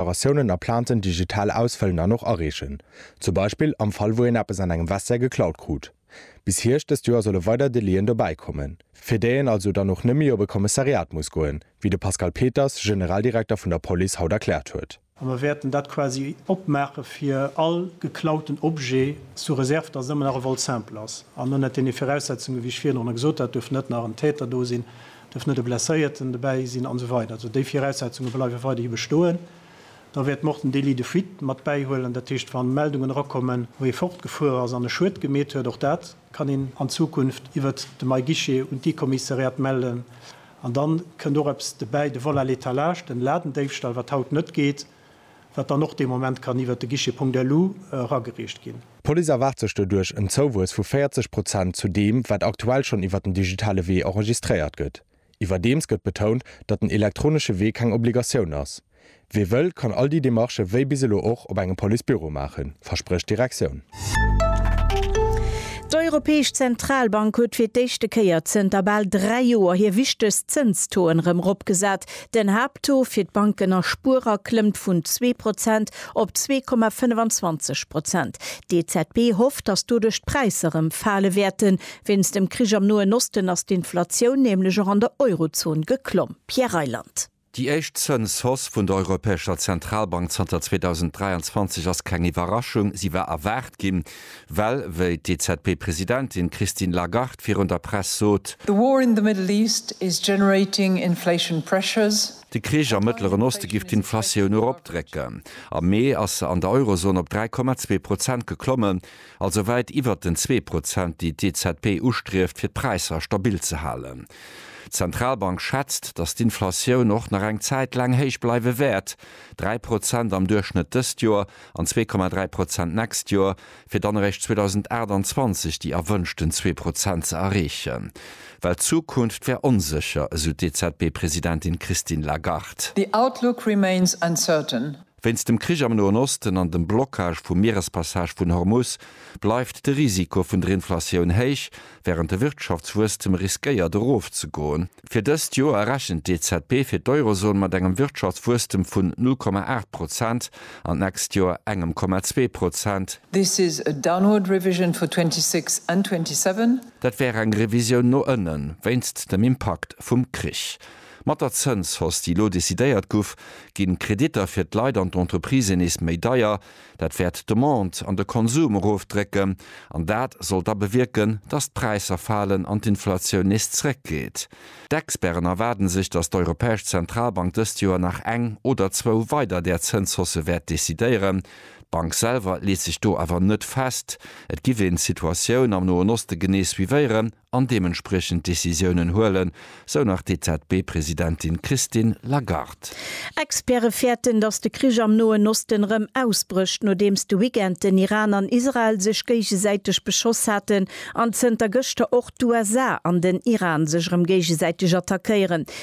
Deklaratiounen a Plainten digital ausfëllen an och areechen. Zum Beispill am Fall wou een eppes an engem Vestiaire geklaut krut. Bis Hierscht dëst Joer solle weider Delien dobäi kommen, fir déi een also dann och net méi op e Kommissariat muss goen, wéi de Pascal Peters, Generaldirekter vun der Police, haut erkläert huet. A mer wäerten dat quasi opmaache fir all geklauten Objet, sous réserve datt et ëmmer nach e Vol simple ass an ënnert deene Viraussetzungen, wéi ech virhin och nach gesot hat. Et duerf net nach en Täter do sinn, dierf net e Blesséierten dobäi sinn an esou weider Also déi Viraussetzunge bleiwe weiderhi bestoen. Da wäert mer och den Délit de fuite mat bäihuelen. Dat heescht, wa Meldungen erakommen, wou ee fortgefuer ass an e Schued gemeet huet, och dat kann een an Zukunft iwwert de MyGuichet un d'I-Kommissariat mellen. An da kënnt och eppes dobäi, de Vol à l'étalage, den Ladendéifstall, wat haut net geet. wat dann och dee Moment kann iwwert de Guichet Punkt Elu eragereecht ginn. D'Police erwaart sech doduerch en Zouwuess vu 40 Prozent zu deem, wat aktuell schonn iwwert den digitale Wee enregistréiert gëtt. Iwwerdeems gëtt betount, datt den elektronesche Wee keng Obligatioun ass. Wie wëll, kann all déi Demarchë wéi bis elo och op engem Police-Büro maachen, versprécht d'Direktioun. D'Europäesch Zentralbank huet fir d'éischte Kéier zënter bal dräi Joer hir wichtegst Zënstoen erëm eropgesat. Den Haapttaux fir d'Banken a Spuerer klëmmt vun zwee Prozent op zwee Komma 25 Prozent. D'EZB hofft, datt doduerch d'Präisser erëm fale wäerten. Wéinst dem Krich am Noen Osten ass d'Inflatioun nämlech och an der Eurozon geklomm. Pierre Reyland. Déi éischt Zënshausse vun der Europäescher Zentralbank zanter 2023 ass keng Iwwerraschung. Si war erwaart ginn. Well, wéi d'EZB-Presidentin Christine Lagarde virun der Press sot. The war in the Middle East is generating inflation pressures. De Krich am Mëttleren Oste giff d'Inflatioun eropdrécken. Am Mee ass se an der Eurozon op 3,2 Prozent geklommen, also wäit iwwert den zwee Prozent, déi d'EZB ustrieft, fir d'Präisser stabil ze halen. D'Zentralbank schätzt, datt d'Inflatioun och nach eng Zäit laang héich bleiwe wäert, dräi Prozent am Duerchschnëtt dëst Joer an 2,3 Prozent d'nächst Joer, fir dann eréischt 2028 déi erwënschten zwee Prozent ze erreechen. Well d'Zukunft wär onsécher, esou d'EZB-Presidentin Christine Lagarde. The outlook remains uncertain. Wéinst dem Krich am Noen Osten an dem Blockage vum Mierespassage vun Hormus bleift de Risiko vun der Inflatioun héich, wärend de Wirtschaftswuesstem riskéiert erofzegoen. Fir dëst Joer rechent d'EZB fir d'Eurozon mat engem Wirtschaftswuesstem vun 0,8 Prozent an d'nächst Joer engem Komma zwee Prozent. This is a downward revision for 26 and 27. Dat wär eng Revisioun no ënnen, wéinst dem Impakt vum Krich. Mat der Zënshausse, déi elo decidéiert guff, ginn d'Kreditter fir d'Leit an d'Entreprisen nees méi deier. Dat wäert d'Demande an de Konsum erofdrécken an dat sollt da bewierken, datt d'Präisser falen an d'Inflatioun nees zréckgeet. D'Experten erwaarde sech, datt d'Europäesch Zentralbank dëst Joer nach eng oder zwou weider där Zënshausse wäert decidéieren. D'Bank selwer leet sech do awer net fest. Et giff een d'Situatioun am Noen Oste genee suivéieren an deementspriechend Decisiounen huelen, sou nach d'EZB-Presidentin Christine Lagarde. Experte fäerten, datt de Krich am Noen Osten erëm ausbrécht, nodeems de Weekend den Iran an Israel sech géigesäiteg beschoss haten an zënter gëschter och d'USA an den Iran sech erëm géigesäiteg attackéieren.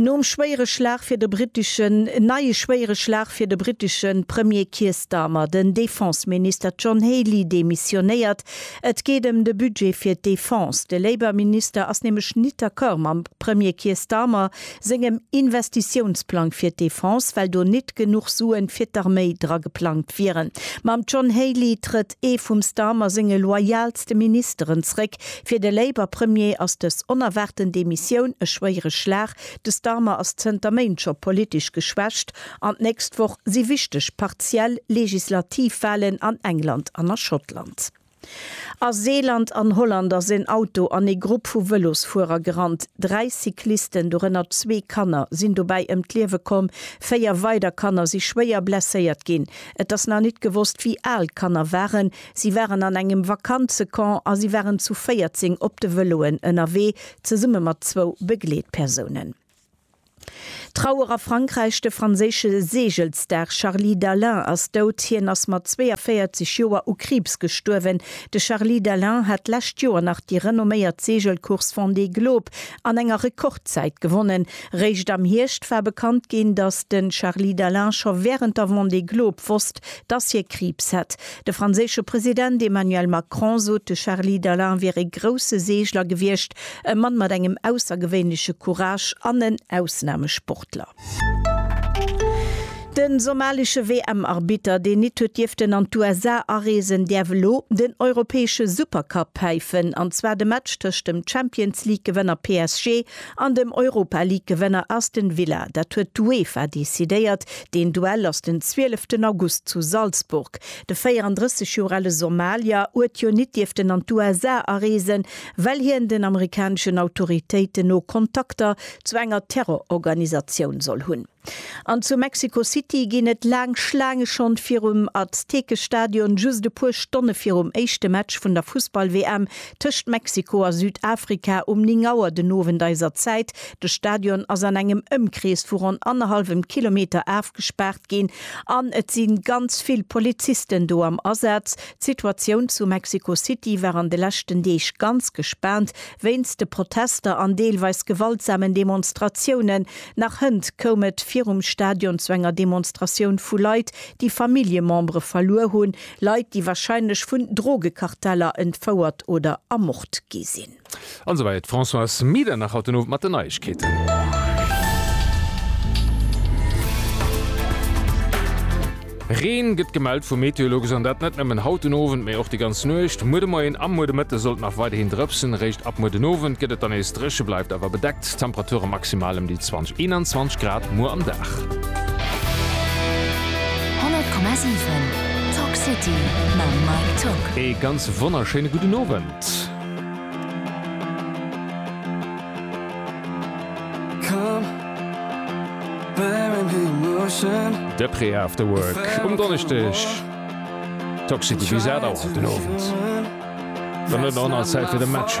Nom schwéiere Schlag fir de briteschen Neie schwéiere Schlag fir de britesche Premier Keir Starmer, den Defenseminister John Healey demissionéiert. Et geet ëm de Budget fir d'Defense. De Labour-Minister ass nämlech nit d'Accord mam Premier Keir Starmer sengem Investitiounsplang fir d'Defense, well do nit genuch Suen fir d'Arméi dra geplangt wieren. Mam John Healey trëtt. ee vum Starmer senge loyalste Ministeren zréck. Fir de Labour Premier ass dës onerwaarten Demissioun e schwéiere Schlag. De Starmer ass zënter Méint scho politesch geschwächt an d'nächst Woch si wichteg partiell Legislativwalen an England an a Schottland. A Seeland an Holland ass en Auto an ee Grupp vu Vëlosfuerer gerannt. Dräi Cyclisten, dorënner zwee Kanner, sinn dobäi ëm d'Liewe komm, véier weider Kanner si schwéier blesséiert ginn. Et ass nach nit gewosst wéi al d'Kanner waren. Si waren an engem Vakanzecamp a si waren zu 14 op de Vëloen ënnerwee, zesumme mat zwou Begleetpersounen. Trauer a Frankräich, De franséische Seegelsstar Charly Dalin ass dout. Hien ass mat 42 Joer u Kriibs gestuerwen. De Charly Dalin hat d'lescht Joer nach déi renomméiert Seegelcourse Vendée Globe an enger Rekordzäit gewonnen. Réischt am Hierscht war bekannt ginn, datt de Charly Dalin scho wärend der Vendée Globe wosst, datt hie Kriibs hätt. De franséische President Emmanuel Macron sot, de Charly Dalin wier ee grousse Seegler gewiescht, e Mann mat engem aussergewéinleche Courage an en Ausnamesportler. De somalische WM-Arbitter, deen nit huet dierften an d'USA areesen, däerf elo den europäesche Supercup päifen, an zwar de Match tëscht dem Champions-League-Gewënner PSG An dem Europa League Gewënner Aston Villa, dat huet d'UEFA decidéiert. Deen Duell ass den 12 ten August zu Salzburg. De 34 Joer ale Somalier uet jo nit dierften an d'USA areesen, well hien den amerikaneschen Autoritéiten no Kontakter zu enger Terrororganisatioun soll hunn. An zu Mexico City ginn et laang Schlaange schonn virum Aztekestadion, just e puer Stonne virum éischte Match vun der Fussball-WM tëscht Mexiko a Südafrika um 9 Auer den Owend eiser Zäit. De Stadion ass an engem Ëmkrees vu ronn annerhallwem Kilometer afgespaart ginn an et si ganz vill Polizisten do am Asaz. D'Situatioun zu Mexico City war an de leschten Deeg ganz gespaant wéinst de Protester an deelweis gewaltsamen Demonstratiounen. Nach hënt koum et virum Stadion zu enger Demonstratioun vu Leit, déi Familljemembere verluer hunn, Leit, déi warscheinlech vun Drogekarteller entfouert oder ermort gi sinn. An esou weider. D'Françoise Medernach haut den Owend mat den Neiegkeeten. Reen gëtt gemellt vu Meteologues an dat net nëmmen haut den Owend, mee och déi ganz Nuecht. Muer de Moien a muer de Mëtte sollt nach weiderhin drëpsen, eréischt ab muer den Owend gëtt et dann nees dréche, bleift awer bedeckt. D'Temperature maximal ëm déi 20, 21 Grad muer am Dag. 100,7 Talk City mam Mike Tock. Ee ganz wonnerschéine gudden Owend. De Pré Afterwork um Donneschdeg, Toxic Bizarre dauert den Owend, dann huet en och nach Zäit fir de Match.